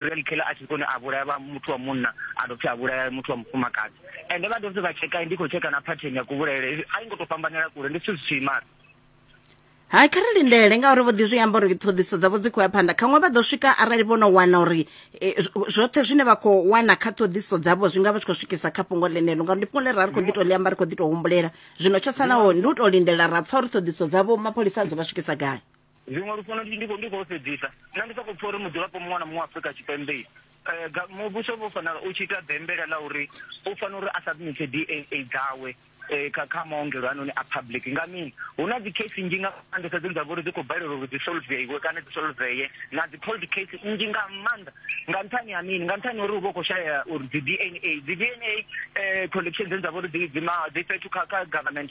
Ryan Keller a tshi kone a vhulaya vha muthu wa munna a dovha futhi a vhulaya muthu wa mufumakadzi ende vha dovha futhi vha tsheka ndi khou tsheka na pattern ya kuvhulaele a i ngo tou fhambanela kule ndi zwithu zwi tshi imana hai kha ri lindele ngauri vho ḓi zwi amba uri ṱhoḓiso dzavho dzi khou ya phanḓa khaṅwe vha ḓo swika arali vho no wana uri e, zwoṱhe zwine vha khou wana kha ṱhoḓiso dzavho zwi nga vha tshi khou swikisa kha fhungo ḽenelo ngauri ndi fhungo ḽe ra ri khou ḓi tou ḽi amba ri khou ḓi tou humbulela zwino tsho salaho ndi u tou lindela ra pfha uri ṱhoḓiso dzavho mapholisa a dzo vha swikisa gai Zwiṅwe lufuno ndi ndi ndi khou sedzisa nṋe ndi sokou pfha uri mudzulapo muṅwe na muṅwe Afrika Tshipembe um muvhuso vho fanela u tshi ita bembela ḽa uri u fanela uri a submit DNA dzawe um kha kha maongelo anoni a public nga mini hu na dzi case nnzhi nga maanḓesa dzine dza vha uri dzi khou balelwa uri dzi solveiwe kana dzi solveye na dzi cold case nnzhi nga maanḓa nga nṱhani ha mini nga nṱhani uri u vha u khou shaya uri dzi DNA dzi DNA um collection dzine dza vha uri dzi dzi fhethu kha kha government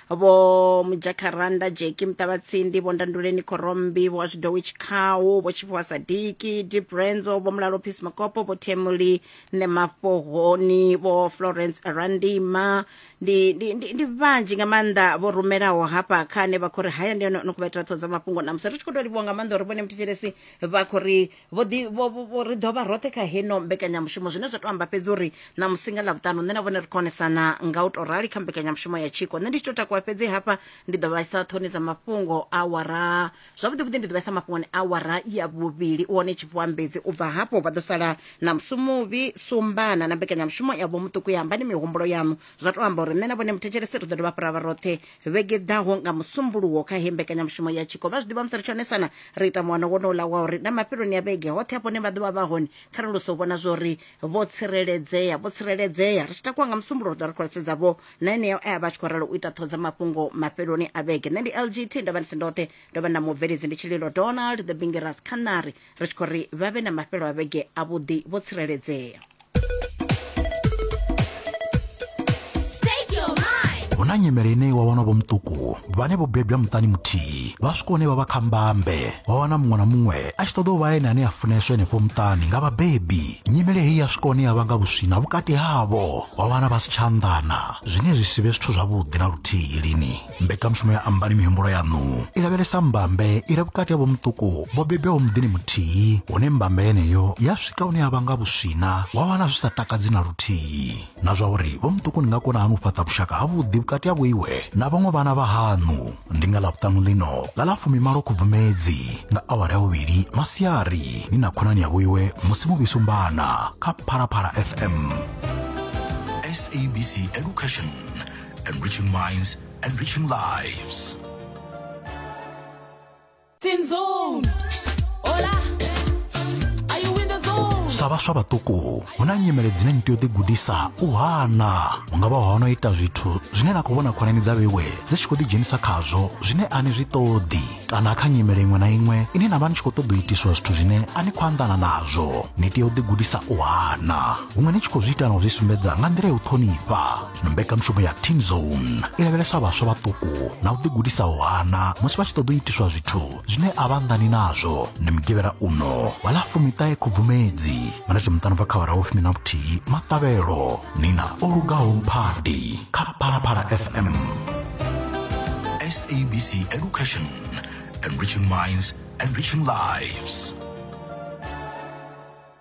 vho mujakaranda jeki muṱavhatsindi vho ndanduleni khorombi vho zwidowi tshikhawu vho tshifhiwa sadiki dibrenzo vho mulalo peace makopo vho themuli ne mafhohoni vho florence randima ndi, ndi, ndi, ndi vhanzhi nga maanḓa vho rumelaho hafha kha ane vha khou ri haya ndi yone no kuvha itela ṱhoho dza mafhungo namusi ri tshi khou tou livhuwa nga maanḓa uri vhone mthetshelesi vha khou ri vho ḓi vho- vho- vho- ri ḓo vha roṱhe kha heno mbekanyamushumo zwine zwa tou amba fhedzi uri na musinga ḽa vhuṱanu nṋe na vhone ri khonesana nga u tou rali kha mbekanyamushumo ya tshiko nṋe ndi tshi tou takuwa fhedzi hafha ndi ḓo vhaisa ṱhoni dza mafhungo a wara zwavhuḓivhuḓi ndi ḓo vhaisa mafhungoni a wara ya vhuvhili u hone tshifhiwa mbedzi u bva hafho vha ḓo sala na musumuvhi sumbana na mbekanyamushumo ya vho muṱuku ya ambani mihumbulo yaṋu zwa tou amba uri nṋe na vhone muthetshelesi ri ḓo dovha fhira vha roṱhe vhege ḓaho nga musumbuluwo kha he mbekanyamushumo ya tshiko vha zwi ḓivha musi ri tshonesana ri ita muwano wonoula wa uri na mafheloni ya vhege hoṱhe hafho ne vha ḓovha vha hone kha ri luso vhona zwori vho tsireledzea vho tsireledzea ri tshi takuwa nga musumbuluwo ri ḓo ri kholesedza vho na eneo e a vha tshi khou ralo u ita ṱhoho dza mafhungo mafheloni a vhege nṋe ndi lgt ndavha ndi si ndoṱhe ndo vha na mubveledzi ndi tshililo donald the bingeras khanari ri tshi khou ri vha vhe na mafhelo a vhege avhuḓi vho tsireledzea hu na nyimele ine wa wana vhomuṱuku vhane vho bebwa muṱani muthihi vha swika hune vha vha kha mbambe wa wana muṅwe na muṅwe a tshi ṱoḓa u vha ene ane a funeswa henefho muṱani nga vhabebi nyimele heyi ya swika hune ya vhanga vhuswina vhukati havho wa wana vha si tsha anḓana zwine zwi si vhe zwithu zwavhuḓi na luthihi lini mbekanyamushumo ya ambani mihumbulo yaṋu i lavhelesa mbambe i re vhukati ha vhomuṱuku vho bebwaho muḓini muthihi hune mbambe yeneyo ya swika hune ya vha nga vhuswina wa wana zwi sa takadzi na luthihi na zwa uri vhomuṱuku ni nga kona hani u fhaṱa vhushaka havhuḓi vhukati ha vhoiwe na vhaṅwe vhana vha haṋu ndi nga ḽavhuṱanu ḽino ḽa ḽa fumimalo khubvumedzi nga awara ya vhuvhili masiari ni na khonani ya vhoiwe musi muvhisumbana kha phalaphala fm SABC Education enriching minds, enriching lives. Tin Zone. Hola. Are you in the zone? sa vhaswa vhaṱuku hu na nyimele dzine ni tea u ḓigudisa u hana hu nga vha ho no ita zwithu zwine na khou vhona khonani dza vhewe dzi tshi khou ḓidzhenisa khazwo zwine a ni zwi ṱoḓi kana kha nyimele iṅwe na iṅwe ine na vha ni tshi khou ṱoḓa u itiswa zwithu zwine a ni khou anḓana nazwo ni tea u ḓigudisa u hana huṅwe ni tshi khou zwi ita na u zwi sumbedza nga nḓila ya u ṱhonifha na mbekanmushumo ya team zone i lavhelesa vhaswa vhaṱuku na u ḓigudisaho hana musi vha tshi ṱoḓa u itiswa zwithu zwine a vha anḓani nazwo ndi mugivhela uno wa ḽa fumiṱahe khubvumedzi vha na tshimuṱano bva kha vhara vhufumi na vhuthihi maṱavhelo ni na o lugaho mphadi kha phalaphala fm sabc education enriching minds enriching lives